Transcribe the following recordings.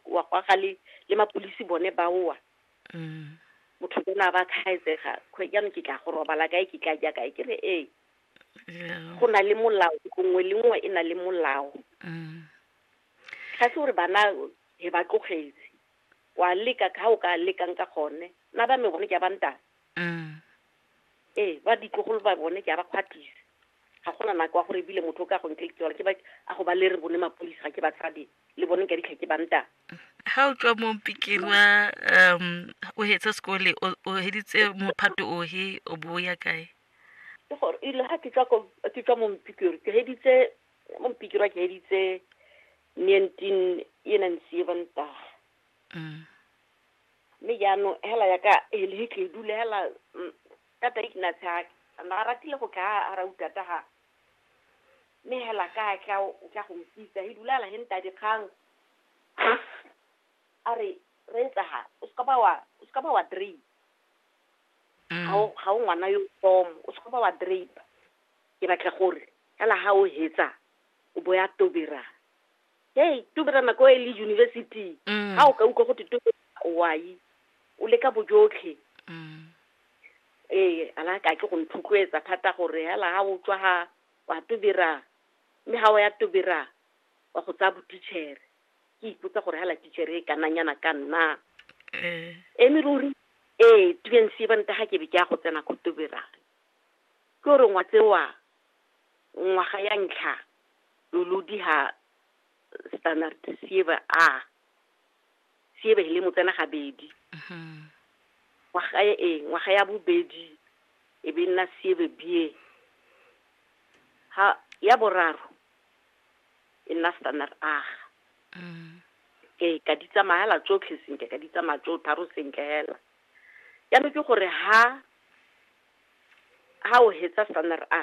wa kwa ga le le mapolisi bone ba oa mm. motho ke na ba khaetsega kgwe jaanong ke tla go robala kae ke tla ja kae ke re ee go na le molao nngwe le nngwe e na le molao mm. ga se gore bana he ba tlogetse wa leka ka o ka lekang ka gone na ba me gone ke ba ntana mm. ee ba ditlogolo ba bone ke a ba kgwatlisa ga gona nako wa gore ebile motho o ka go nkeletsela ke ba a go ba le re bone mapodisa ga ke batsadi le bone ka ditlha ke banta ha o tswa mo pikiri wa um o hetse sekole o- o heditse mophato ohe o bo o ya kae ke gore ile ga ke tswa ko- ke tswa mo mpikiri ke heditse mo mpikiri wa ke heditse nineteen e nang seven taga Mm. mme jaanong hela yaka helehitledu le hela mm, tata ikna tsha na a ratile go tla a ra utata ga mme hela ka tla o tla go mpitsa he dulala he nta dikgang a re re etsa ha o se ka ba wa o se ka ba wa drain ga o ga o ngwana yo tom o se ka ba wa drain ke batla gore hela ha o hetsa o bo ya tobera hey tubera nako e le university Mm. ga o ka utlwa go te tube wai o leka bojotlhe Mm. ee ala ka ke go nthotloetsa thata gore hela ga o tswa ga wa tobera mme ga o ya tobera wa go tsaya botichere ke ipotsa gore hela tichere e kananyana ka nna Eh. eme ruri ee tubense ba ntaga ke be ke ya go tsena ko tobera ke gore ngwa tsewa ngwaga ya ntlha Lolodi ha standard sieva a sieva hi le mo tsena gabedi ngwaga e e ngwaga ya bobedi e be nna sieve bie ha ya boraro e nna standard a ke ka di tsamaya la tsotlhe sentle ka di tsamaya tso tharo sentle hela ya no ke gore ha ha o hetsa standard a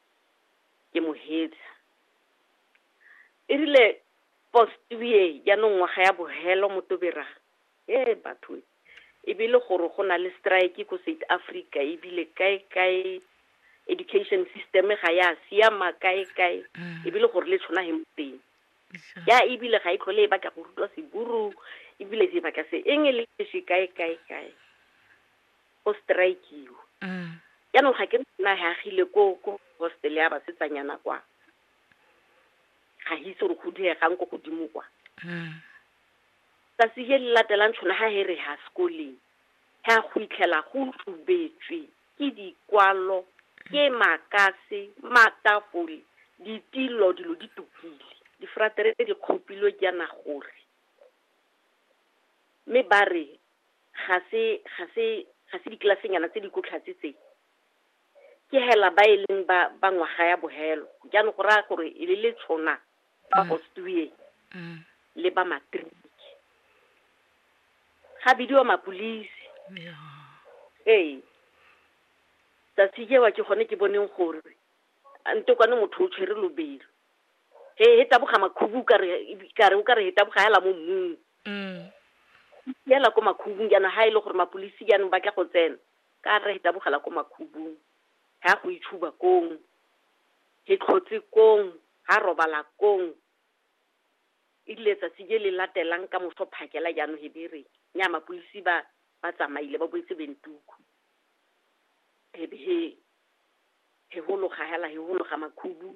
ke mo heetsa e rile postuye jaanong ngwaga ya bohelo motobera e batho e bile gore go na le strike ko south africa ebile kae kae education system ga ya siama kae kae mm. ebile gore le tshwana he moteng ya ebile ga e tlhole e batla go rutwa seburu ebile se batla se eng e le se kae kae kae go strike-iwa. Jaanong ga ke re nna he agile ko ko hostel ya basetsanyana kwa. Ga ke itse gore go diregang ko godimo kwa. Tsatsi le le latelang tšhono ga he re ha sekoleng, he a go itlhela go tubetswe ke dikwalo, ke makase, matafole, ditilo, dilo di tukile. Difratere di kgopilwe jaana gore. Mme ba re ga se ga se ga se ditlelasenyana tse di ko tlhatse tse ke hela ba e leng ba ba ngwaga ya bohelo jaanong go raya gore e le le tshona ba mm. ostueng mm. le ba matric ga bidiwa mapolisi ee tsatsi jewa ke gone ke boneng gore a nte kwane motho o tshwere lobelo he he taboga makhubu ka re ka re o ka re he taboga hela mo mmung Mm. yela ko makhubung jaanong ha e le gore mapolisi jaanong ba tla go tsena ka re he tabogela ko makhubung ha go itshuba kong he tlhotse kong ha robala kong e rile tsatsi je le latelang ka moso phakela jaanong he be re nya mapolisi ba ba tsamaile ba boetse bentuku he be he he hologa hela he hologa makhubu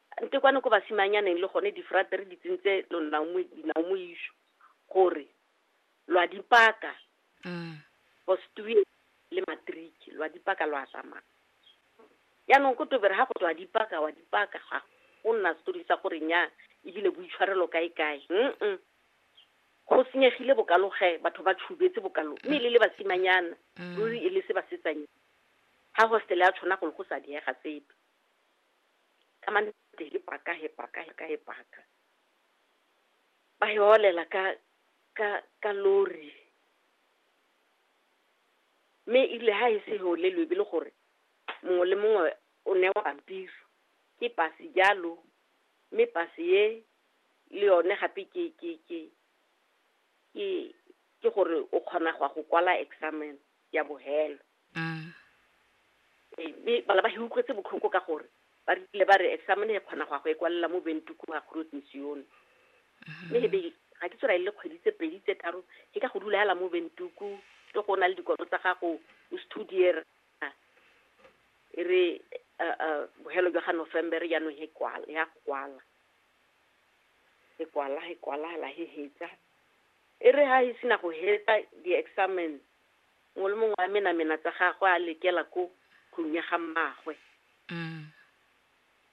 Nte kwano ko basimanyaneng le gone difrate re di tsentse dinaomoišo gore lwa dipaka mm. postue le matriki lwa dipaka lwa tsamaya yaanong ko tobere ga go tswa dipaka wa dipaka ga go nna setori sa gore nya ebile boitshwarelo kae kae mm go senyegile bokaloge batho ba tshubetse bokalo mme le le basimanyana mm. ruri e le se basetsanyana ga hostele ya tshwana golo go sa diega sepe ka mane ti hi paka hi paka hi ka hi paka va hi holela ka ka ka lori mme ile ha e se holelwe e bile gore mongwe le mongwe o newa pampiri ke pase jalo mme pase ye le yone gape ke ke ke ke ke gore o kgona go ya go kwala examen ya bohelo Mm. Ee, mme bana ba hiukwetse botlhoko ka gore ba rile ba re examine e kgona go ya go e kwalela mo bentuku ga groot mission mme e be ga ke tsora e le kgwedi tse pedi tse tharo ke ka go dula yala mo bentuku ke go na le dikolo tsa gago o studier e re uh, uh, bohelo jwa ga november jaanong he kwala ya go kwala e kwala e kwala la he hetsa e re ha e sena go hetsa di-examen Mongwe le mongwe a menamena tsa gagwe a lekela ko tlong ya ga mmaagwe.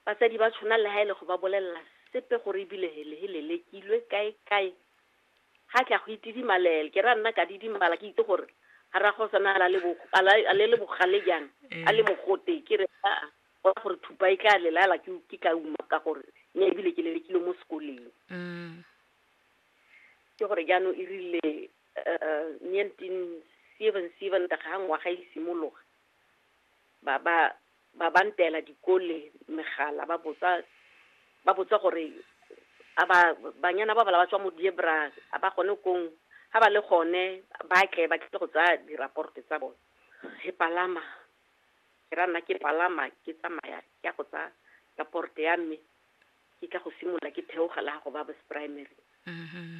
Batsadi ba tshwana le ha e le go ba bolelela sepe gore ebile hele he lelekilwe kae kae. Ga tla go itidimalel ke ra nna ka didimala ke itse gore ga ra go sana la le bo a la a le le bogale jang a le mogote ke re a a gona gore thupa e tla lelala ke ke ka uma ka gore ne ebile ke lelekilwe mo sekoleng. Ke gore jaanong e rile 1977 ka ga ngwaga e simologa ba ba ba ba ntela dikole megala ba botsa ba botsa gore a ba banyana ba bala ba tswa mo diebra a ba gone kong ga ba le gone ba tle ba tle go tsaya diraporte tsa bone re palama ke ra nna ke palama ke tsamaya ke ya go tsaya raporte ya mme ke tla go simolola ke theogela go ba primary mm-hmm.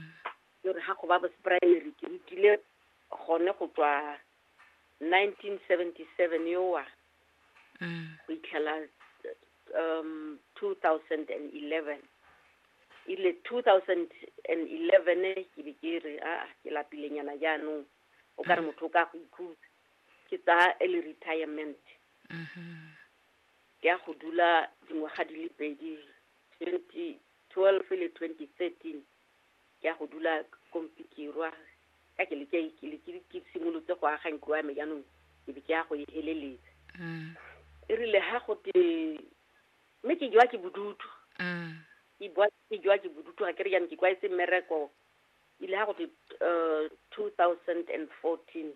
ke re ga go ba bose primary ke rutile gone go tswa 1977 yowa mm. go itlhela um 2011 ile 2011 ke be ke re a ke lapilenyana jaanong o ka re mm. motho o ka go ikhutsa ke tsa early retirement mm-hmm. ke ya go dula dingwaga di le pedi 2012 le 2013 ke ya go dula kompikirwa ka ke le ke- ke le- ke le- ke simolotse go aga ntlo ya me jaanong ke be ke ya go e heleletsa Mm. e rile ha go te mme ke jwa ke bodutu Mm. ke bua ke jwa ke bodutu ga ke re jaanong ke kwaetse mmereko ile ga go te um two thousand and fourteen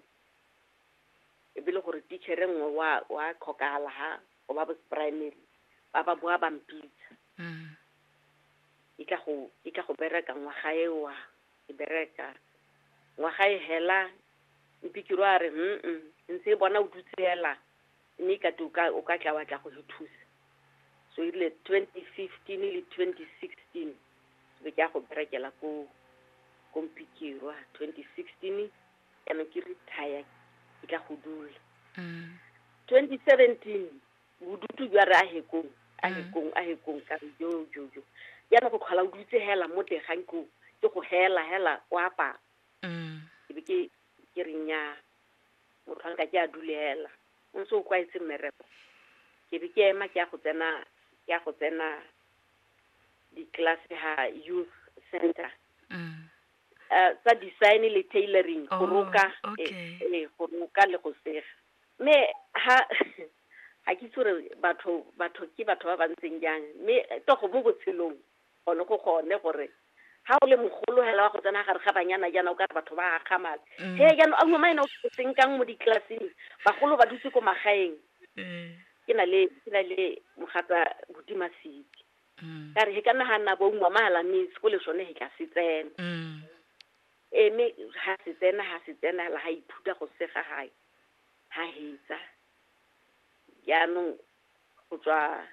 e be le gore tichere nngwe wa wa tlhokagala ga o ba bos primary ba ba boa bampitsa Mm. e tla go, e tla go bereka ngwaga e wa, e bereka. Ngwaga e hela, Mpikiro a re, mm-mm, ntse e bona o dutse hela, mme e kate o ka, o ka tla wa tla go re thusa. So e rile 2015 le 2016, ke be ke ya go berekela ko, ko Mpikirwa. 2016, jaanong ke retire, ke tla go dula. 2017, bodutu jwa re ahekong ahekong ahekong ka re jo jo jo jaanong go tlhola o dutse hela mo teng ga nko ke go hela hela o apara mm. ke be ke ke re nnyaa motho wa nka ke a dule hela o ntse o kwaetse mmereko ke be ke ema ke ya go tsena ke ya go tsena ditlelase ha youth center mm. eh, tsa design le tailoring go oh, roka eh, eh, go roka le go sega mme ha ga ke itse gore batho batho ke batho ba ba ntseng jang mme togo mo botshelong gone go gone gore ga o le mogolo hela wa go tsena gare ga banyana jaana o ka re batho ba akgamala mm. he jaanong a ngwama ene o senkang mo ditleleseng bagolo ba dutse ko magaeng mm. ke na le ke na le mogata botima seke mm. ka re he ka nagana bo ngwama hela mme sekole sone he ka se tsena Eme ha se tsena ha se tsena la ha ithuta go sega ha ha hitsa jaanong go tswa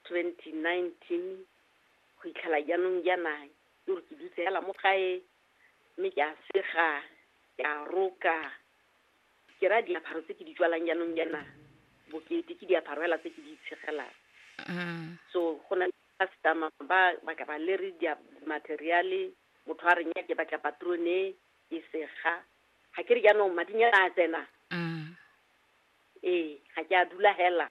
2019 go itlhela jaanong jaana ke gore ke dutse fela mo gae mme ke a sega ke a roka ke ra diaparo tse ke di tswalang jaanong jaana bokete ke diaparo fela tse ke di itshegelang so go na le customer ba ba ka ba lere materiale Motho a re, Nya, ke batla patrone e sega. Ga ke re jaanong madinyana a tsena? Ee, ga ke a dula hela.